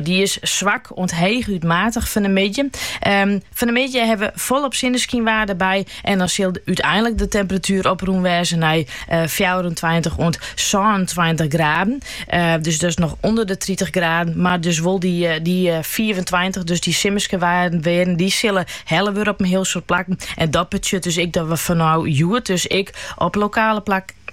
Dy is swak oant heechút matich fan de middei. Ehm, fan de middei hawwe we folop sinneskynwaar derby en dan sil úteinlik de temperatuer oprûn wêze nei 24 oant 26 graden. Eh, dus dat is noch ûnder de 30 graden, mar dus wol dy, eh, dy 25, eh, dus dy simmerske waarden, wearden, dy sille helle wurde op in hiel soad plakken. En dat betsjut dus ek dat we fanôf hjoed dus ek op lokale plak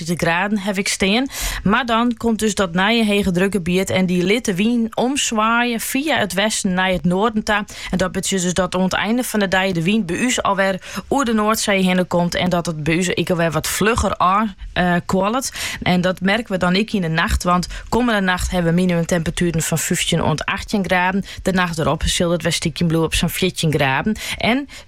Tritich graden haw ik stean. Mar dan komt dus dat nije hegedrukgebiet en dy lit de wyn omswaaie fia it westen nei it noarden ta. En dat betsjut dus dat oan 't einde fan de dei de wyn by ús alwer oer de Noardsee hinne komt en dat it by ús ek alwer wat flugger ôfkuolet. En dat merken we dan ek yn de nacht, want kommende nacht hawwe we minimumtemperatueren fan fyftjin oant achttjin graden. De nacht derop sil dat wer stykjen bliuwe op sa'n fjirtjin graden. En